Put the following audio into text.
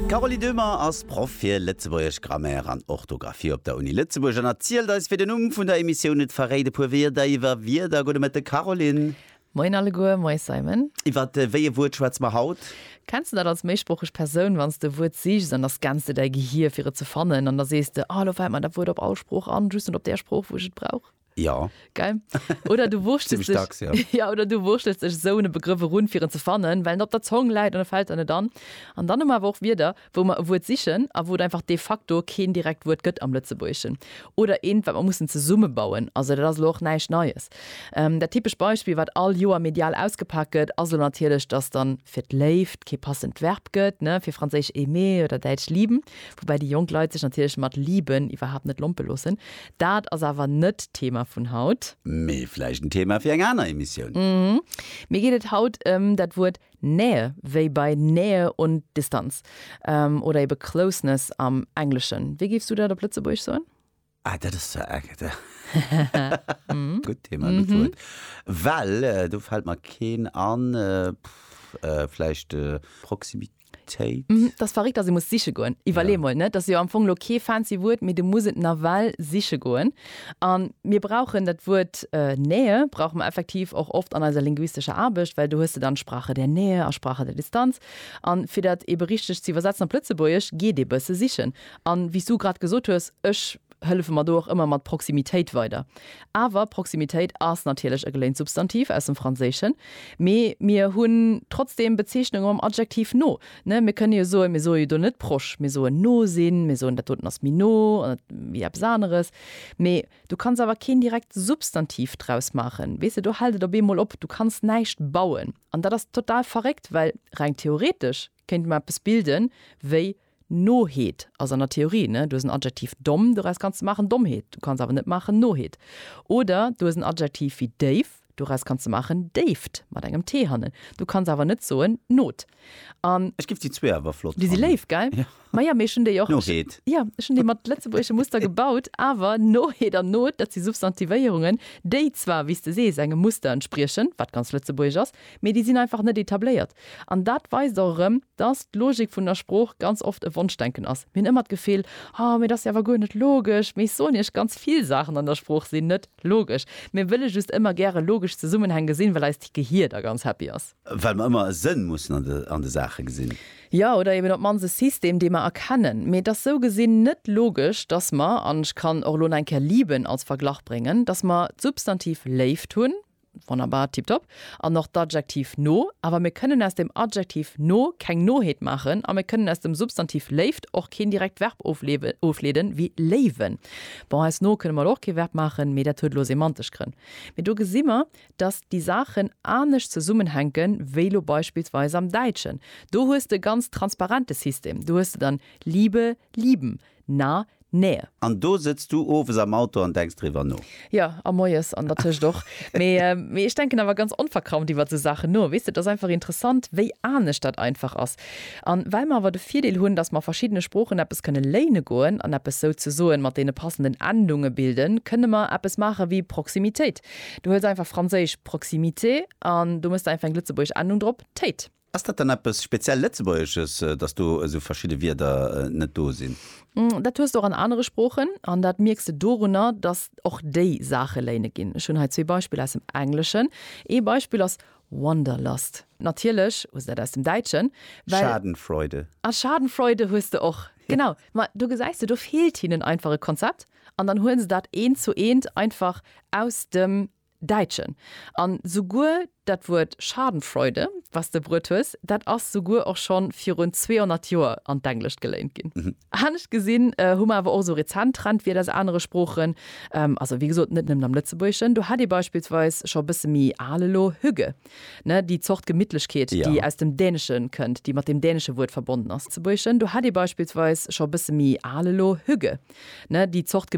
D'Carolie Döhmer ass Proff fir Lëtzebuergesch, Grammaire an Orthografie op der Uni Lëtzebuerg an erzielt eis wéi den Numm vun der Emissioun et verréit e puer Wierder iwwer Wierder. Gudde Mëtte Caroline. Moien alleguer, moies Simon. Iwwer wéi e Wuert schwätze mer haut? Kenns de dat als méisproocheg Persoun, wann s de e Wuert sichs an da scanns de däi Gehier fir et ze fannen an da sees de, ah elo fält mer dat Wuert op all Sprooch an, just net op där Sprooch wou ech et brauch? Ja. Gell? Oder du wurschtels Zimmlech dacks, ja. dech, ja, oder du wurschtels dech esou un e Begrëff erun, fir en ze fannen, well en op der Zong läit an e fält der net an. An dann hu mer awer och Wierder, wou mer e Wuert sichen a wou et einfach de facto keen direkt Wuert gëtt am Lëtzebuergeschen. Oder eent, wat mer mussen zesummebauen. Also dat ass elo och näischt Neies. Dat typescht Beispill, wat all Joer medial ausgepak gëtt, ass elo natierlech, dass dann fir d'Léift kee passend Verb gëtt, ne, fir franséisch aimer oder däitsch lieben, woubäi déi jonk Leit sech natierlech mat lieben iwwerhaapt net lompe loossen. Dat ass awer net d'Thema vun haut. Mee vläicht en Thema fir eng aner Emissioun. Mhm. Mir geet et haut ëm dat Wuert Nähe, wéi bei Nähe und Distanz oder ebe Closeness am Engleschen. Wéi géifs du dat op Lëtzebuergesch soen? Ah, dat ass zwar e gutt Thema, e gutt Wuert. Well do fält mer keen an. Vläicht Proximitéit? Téit. Hm, dat ass verréckt, dass ee muss siche goen. Iwwerlee mol, net? Dat ass jo am Fong elo kee fancy Wuert, mee de muss et nawell siche goen. A mir brauchen dat Wuert Nähe brauche mer effektiv och oft an eiser linguistescher Aarbecht, well do hues de dann Sprache der Nähe a Sprache der Distanz. A fir dat eebe richteg ze iwwersetzen op Lëtzebuergesch, geet ee bësse sichen. A wéi s du grad gesot hues, ech hëllefe mer do och ëmmer mat Proximitéit weider. Awer Proximitéit ass natierlech e geléint Substantiv aus dem Franséischen, mee mir hunn trotzdeem Bezeechnunge mam Adjektiv no. Mir kënne jo soen, mir soe jo do net proche, mir soen no sinn, mir soen dat doten ass méi no wéi eppes aneres, mee du kanns awer keen direkt Substantiv draus maachen. Weess de, do hält et op eemol op, du kanns näischt bauen. An dat ass total verréckt, well reng theoretesch kéinte mer eppes bilden wéi Noheet ass an der Theorie, ne? Du hues en Adjektiv domm, doraus kanns de maachen Dommheet. Du kanns awer net maachen Noheet. Oder du hues en Adjektiv wéi déif, doraus kanns de maachen Déift, mat engem t hannen. Du kanns awer net soen Not. An. Ech giff déi zwee awer flott fannen. Déi si léif, gell? Jo. Ma ja, mee ech hunn déi och. Noheet. Ja, ech hunn déi mat lëtzebuergesche Muster gebaut. Awer Noheet an Not, dat si Substantivéierungen, déi zwar, wéi s de sees, engem Muster entspriechen, wat ganz lëtzebuergesch ass, Mee déi sinn einfach net etabléiert. An dat weist och erëm, dass d'Logik vun der Sprooch ganz oft e Wonschdenken ass. Mir hunn ëmmer d'Gefill, Oh, mee et ass jo awer guer net logesch. Mee ech soen Iech, ganz vill Saachen an der Sprooch sinn net logesch. Mir wëlle just ëmmer gäre logesch Zesummenhäng gesinn, well eist Gehier da ganz happy ass. Well mer ëmmer e Sënn mussen an de Saache gesinn. Jo, oder eben op d'mannst e System, dee mer erkennen. Mee et ass sou gesinn net logesch, dass mer, an ech kann och elo nach eng Kéier lieben als Verglach bréngen, dass mer d'Substantiv Léift hunn, Wonnerbar, tiptop. An och d'Adjektiv no. Awer mir kënnen aus dem Adjektiv no keng Noheet maachen a mir kënnen aus dem Substantiv Léift och keen direkt Verb ofleeden, wéi léiwen. Bon, aus no kënne mer elo och kee Verb maachen, mee dat huet elo semantesch Grënn. Mee do gesi mer, dass déi Saachen anescht zesummenhänken, wéi elo beispillsweis am Däitschen. Do hues de e ganz transparente System. Do hues de dann Liebe, lieben. Na, nää. An do sëtz du owes am Auto an denks driwwer no? Jo, a moies an dertëscht och. Mee ech denken awer ganz onverkrampft iwwer esou Saachen no. Weess de, et ass einfach interessant, wéi anescht dat einfach ass. A well mer awer de Virdeel hunn, dass mer a verschiddene Sproochen eppes kënne léine goen an eppes souzesoen mat deene passenden Endunge bilden, kënne mer eppes maache wéi Proximitéit. Du huels einfach franséisch proximité an do mëss de einfach eng lëtzebuergesch Endung drop, téit. Ass dat dann eppes speziell Lëtzebuergesches, datt do esou verschidde Wierder net do sinn? Dat hues de och an anere Sproochen. An dat mierks de dorunner, datt och déi Saache léine ginn. Ech hunn hei zwee Beispiller aus dem Engleschen. Ee Beispill ass Wanderlust. Natierlech hues de dat aus dem Däitschen, well. Schadenfreude. A Schadenfreude hues de och. Genau. Ma do gesäis de, do feelt hinnen einfach e Konzept. An dann huelen se dat eent zu eent einfach aus dem Däitschen. An souguer dat Wuert Schadenfreude, wat s de bruet hues, dat ass souguer och scho virun 200 Joer an d'Englescht geléint ginn. Anescht gesinn hu mer awer och esou rezent Trendwierder aus anere Sproochen, also wéi gesot net nëmmen am Lëtzebuergeschen. Do hätt ee beispillsweis scho e bësse méi al elo hygge, déi Zort Gemittlechkeet, déi aus dem Dänesche kënnt, déi mat deem dänesche Wuert verbonnen ass. Do hätt ee beispillsweis scho e bësse méi al elo hygge, déi Zort.